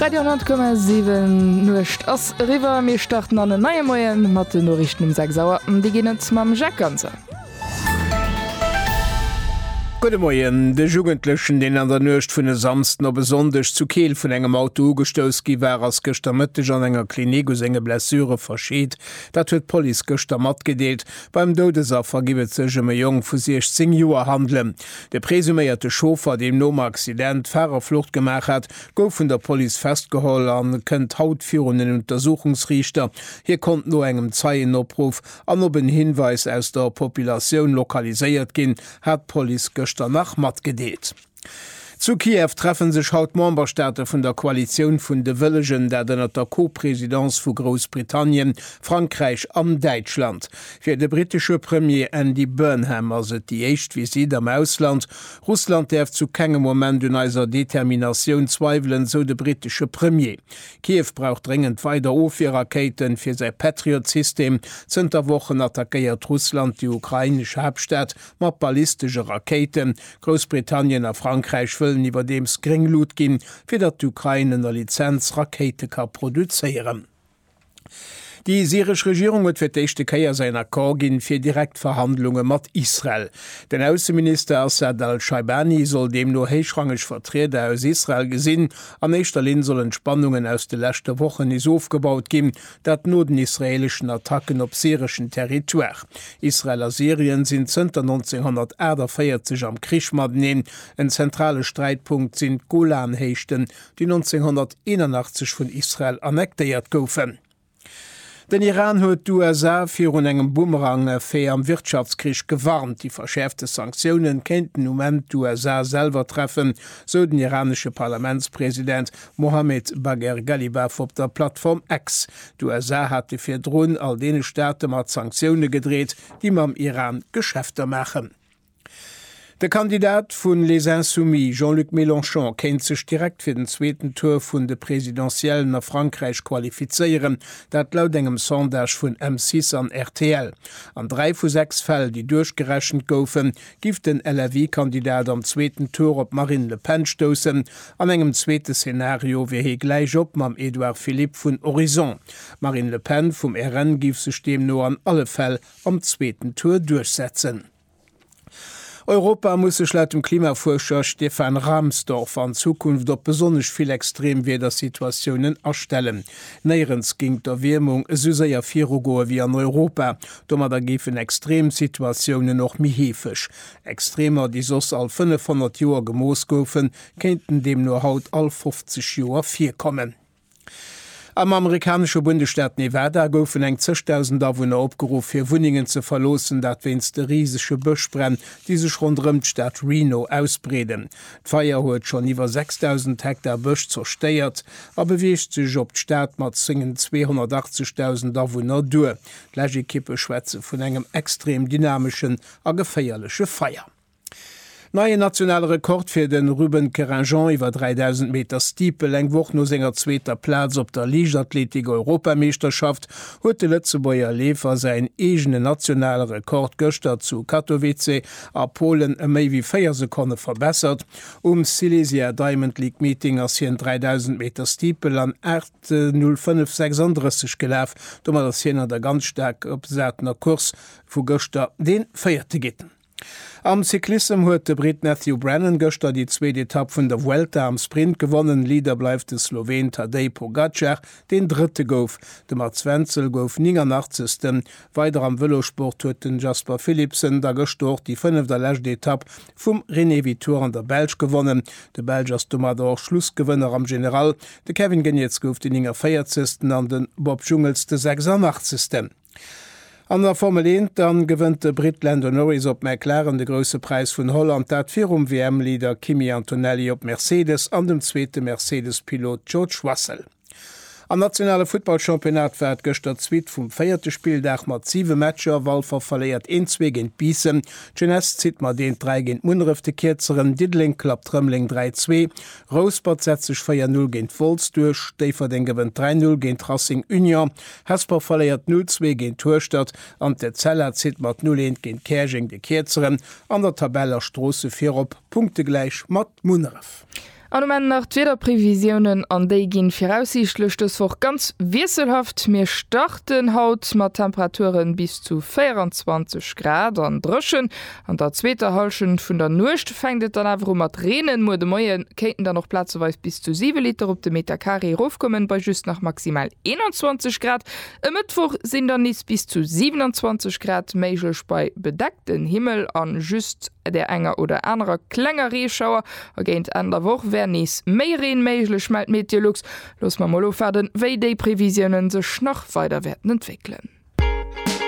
Radio 10,7 Nuecht ass eriwwer mir starten an en neie Moien mat de Norichten um 6 Auer an déi ginn et mam Jacques Ganzer. Gudde Moien. De Jugendlechen, deen an der Nuecht vun e Samsden op e Sonndeg zu Keel vun engem Auto ugestouss gi war, ass gëschter Mëtteg an enger Klinik u senge Blessure verscheet. Dat huet d'Police gëschter matgedeelt. Beim Doudesaffer giff et sech ëm e Jong vu 16 Joer handelen. De presuméierte Chauffer, deem nom Accident d'Farerflucht gemaach hat, gouf vun der Police festgeholl a kënnt haut virun den Untersuchungsriichter. Hie konnt no engem Zeienopruff an op en Hinweis aus der Populatioun lokaliséiert ginn, hat d'Police gëschter nach matgedeelt. Zu Kiew treffe sech haut d'Memberstaate vun der Koalitioun vun de Wëllegen, dat ënnert der Co-Presidence vu Groussbritannien, Frankräich an Däitschland. Fir de brittesche Premier Andy Burnham ass et déi éischt Visitt am Ausland. Russland däerf zu kengem Moment un eiser Determinatioun zweiwelen, esou de brittesche Premier. Kiew brauch dréngend weider Ofwierrakéiten fir säi Patriot-System. Zënter Wochen attackéiert Russland déi ukrainesch Haaptstad mat ballistesche Rakéiten. Groussbritannien a Frankräich wëllen iwwerdeems gréng Lut ginn, fir datt d'Ukrain ënner Lizenz Rakéite ka produzéieren. Déi syresch Regierung huet fir d'éischte Kéier säin Accord ginn, fir direkt Verhandlunge mat Israel. Den Ausseminister Assad al-Shaibani soll deemno héichrangeg Vertrieder aus Israel gesinn. An éischter Linn sollen d'Spannungen aus de leschte Wochen nees ofgebaut ginn, dat no den israeeleschen Attacken op syreschen Territoire. Israel a Syrien sinn zënter 1948 am Krich mateneen. En zentrale Sträitpunkt sinn d'Golanhéichten, déi 1981 vun Israel annektéiert goufen. Den Iran huet d'USA virun engem Boomerang-Effet am Wirtschaftskrich gewarnt. Déi verschäerfte Sanktioune kéinten um Enn d'USA selwer treffen, sou den iranesche Parlamentspresident Mohammed Bagher Ghalibaf op der Plattform X. D'USA hate virdrun all deene Staate mat Sanktioune gedreet, déi mam Iran Geschäfter maachen. De Kandidat vu Les Insoumis, Jean-Luc Mélenchon, kéint sech direkt fir den zweeten Tour vun de Presidentiellen a Frankräich qualifizéieren, dat laut engem Sondage vun M6 an rtl. An dräi vu sechs Fäll, déi duerchgerechent goufen, giff den LFI-Kandidat am zweeten Tour op d'Marine Le Pen stoussen. An engem zweete Szenario wier hie gläich op mam Edouard Philippe vun Horizon. D'Marine Le Pen vum RN giff sech deemno an alle Fäll am zweeten Tour duerchsetzen. Europa muss sech laut dem Klimafuerscher Stefan Rahmstorf an Zukunft op besonnesch vill Extremwiedersituatiounen astellen. Néierens géing d'Erwiermung esou séier virugoe wéi an Europa. Domadder géifen Extremsituatiounen och méi heefeg. Extremer, déi soss all 500 Joer gemooss goufen, kéinten deemno haut all 50 Joer virkommen. Am amerikanesche Bundesstaat Nevada goufen eng zeg Dausend Awunner opgeruff, hir Wunnengen ze verloossen, dat wéinst de risege Bëschbränn, déi sech ronderëm d'Stad Reno ausbreeden. D'Feier huet schonn iwwer 6.000 Hektar Bësch zerstéiert a beweegt sech op d'Stad mat sengen 280 Dausend Awunner duer. D'Läschekippe schwätze vun engem extrem dynameschen a geféierleche Feier. Neien nationale Rekord fir de Ruben Querinjean iwwer 3.000 Meter Steeple. Eng Woch no senger zweeter Plaz op der Liichtathletik-Europameeschterschaft huet de Lëtzebuerger Leefer säin eegene nationale Rekord gëschter zu Katowice a Polen ëm méi wéi 4 Sekonne verbessert. Um Silesia Diamond League Meeting ass hien 3.000 Meter Steeple an 8.05,36 gelaf. Domat ass hien an der ganz staark opgesatener Course vu gëschter dee Véierte ginn. Am Cyclissem huet de Britt Matthew Brennan gëschter déi zweet Etapp vun der Vuelta am Sprint gewonnen. Leader bleift de Sloween Tadej Pogacar, deen Drëtte gouf. De Mats Wenzel gouf 89. Weider am Vëlossport huet den Jasper Philipsen da gëschter och déi fënneft a lescht Etapp vum René Vitoire an der Belsch gewonnen. De Belsch ass domadder och Schlussgewënner am General. De Kevin Geniets gouf de 49. an de Bob Jungels de 86. An der Formel Eent dann gewënnt de Britt Lando Norris op McLaren de Grousse Präis vun Holland, dat virum WM-Leader Kimi Antonelli op Mercedes an dem zweete Mercedes-Pilot George Russell. Am nationale Futtballchampionnat war et gëschter d'Suite vum véierte Spilldag mat siwe Matcher, Walfer verléiert een zwee géint Biissen, d'Jeunesse zitt mat eent dräi géint Munneref de Kierzeren, Diddeleng klappt Rëmeleng dräi zwee, Rouspert setzt sech 4 Null géint Wolz duerch, Déifferdeng gewënnt 3 Null géint Racing Union, Hesper verléiert 0, zwee géint Hueschtert an d'Etzella zitt mat 0, eent géint Käerjeng de Kierzeren an der Tabell a Stroosse virop, punktegläich mat Munneref. An um Enn nach d'Wiederprevisiounen an déi ginn viraussiichtlech dës Woch ganz wiesselhaft. Mir starten haut mat Temperaturen bis zu 24 Grad an dréchen. An der zweeter Hallschent vun der Nuecht fänkt et dann awer u mat reenen. Muer de Moie kéinten dann och plazeweis bis zu 7 Liter op de Meter Carré erofkommen, bei just nach maximal 21 Grad. E Mëttwoch sinn dann nees bis zu 27 Grad méiglech bei bedeckten Himmel a just der enger oder anerer klenger Reeschauer. A géint Enn der Woch wär nees méi Reen méiglech, mellt Meteolux. Loosse mer mol ofwaarden, wéi déi Previsiounen sech nach weider wäerten entwéckelen.